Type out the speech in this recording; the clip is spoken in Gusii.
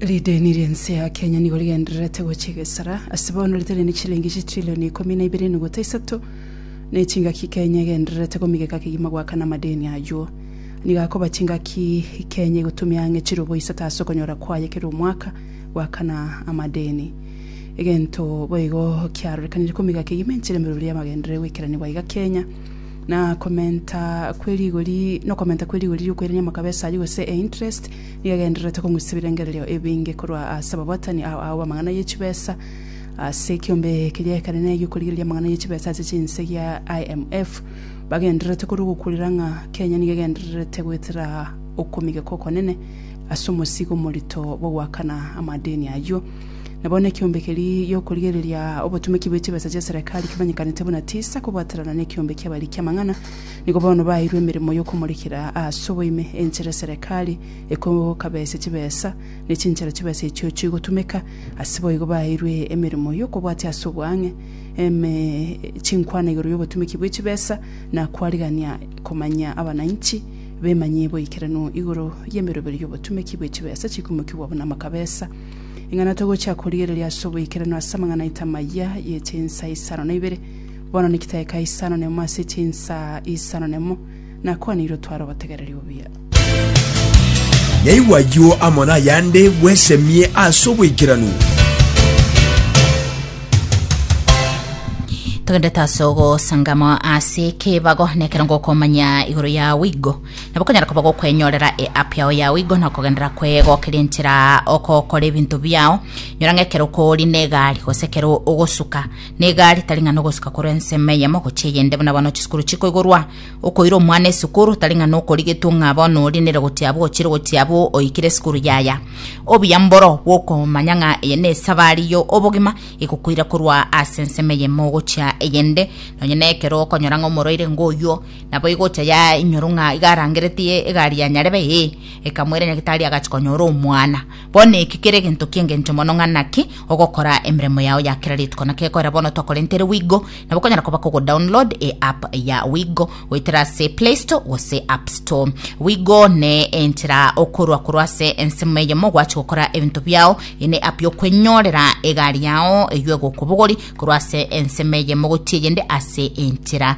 Rideni ri'ense ya Kenya nigo rigendererete gochia egesara, ase bono riteranie chilingi chitrillioni ikomi na ibere enuguta isato, na echingaki Kenya egendererete komigeka kegima goakana amadeni ayio. Nigo akoba chingaki Kenya egotumia ang'e chirobo isato ase okonyora kwaye kera omwaka goakana amadeni. Egento boigo kiarorekanire komigeka kegima enchera emeruru y'amagenderere goikerania gwaiga Kenya, na komenta kwe rigori nokomenta kwe rigori riokoirania amakabo esari gose e interest nigo egendererete kong'usisa ebirengererio ebinge korwa ase ababwatani ao ao b'amang'ana ye chibesa ase ekiombe keria ekenene egiokorigereria amang'ana ye chibesa ase chinse gia IMF bagendererete korwa ogokurera ng'a Kenya nigo egendererete goetera okomigeka okonene ase omosigo omorito bw'ogoakana amadeni ayio. Na bono ekiombe keria gi'okorigereria obotumeki bwe chibesa chia Serekari kimanyekanete buna tisa kobwaterana nekiombe ki'abariki amang'ana, nigo bono baeirwe emeremo y'okomorekera ase oboime enchera Serekari ekokabesia chibesa, ne chinchera chibesa echio chigotumeka, ase boigo baeirwe emeremo y'okobwatia ase obwang'e eme chinkwana igoro y'obotumeki bwe chibesa, na kwarigania komanya abananchi bemanyie boikeranu igoro y'emeroberio y'obotumeki bwe chibesa chikumokigwa buna amakabesa. Ing'ana togochia korigereria ase oboikeranu ase amang'ana aito amayia ye chinsa isano na ibere, bono niki taeka isano nemo ase chinsa isano nemo, nakwaneirwe tware obotegereri obuya. Nyaigwa ayio amo nayande bwesemie ase oboikeranu. Togendete ase ogosangama ase ekebago, nekero ngokomanya igoro ya wigo. Nabo okonyara koba gokwenyorera eapp yao yao igo na okogenderera kwegokeria enchera okokora ebinto biao nyora ng'a ekero okori negari gose ekero ogosuka negari tari ng'a nogosuka korwa ensemo eyemo gochia eyende buna bono chisukuru chikoigorwa okoira omwana esukuru tari ng'a nokorigetwa ng'a bono ori nere gochia abwo ochire gochia abwo oikire esukuru yaya obuya mboro bwokomanya ng'a eye na esabari yo obogima egokoira korwa ase ensemo eyemo gochia eyende nonye na ekero okonyora ng'a omorwaire ngoyuo Naboigo ocha yainyoru ng'a iga arangeretie egari ya nyarebe ee, ekamoira nyagetari agachi konyora omwana. Bono eki kere egento ki'engencho mono ng'a naki ogokora emeremo yao ya kera rituko. Naki ekorera bono twakorentere Wigo, nabo okonyara koba kogo download e app ya Wigo goetera ase Play Store gose App Store. Wigo ne enchera okorwa korwa ase ensemo eyemo gwachi gokora ebinto biao. Eye ne app yokwenyorera egari yao eywo egokobogori korwa ase ensemo eyemo gochia eyende ase enchera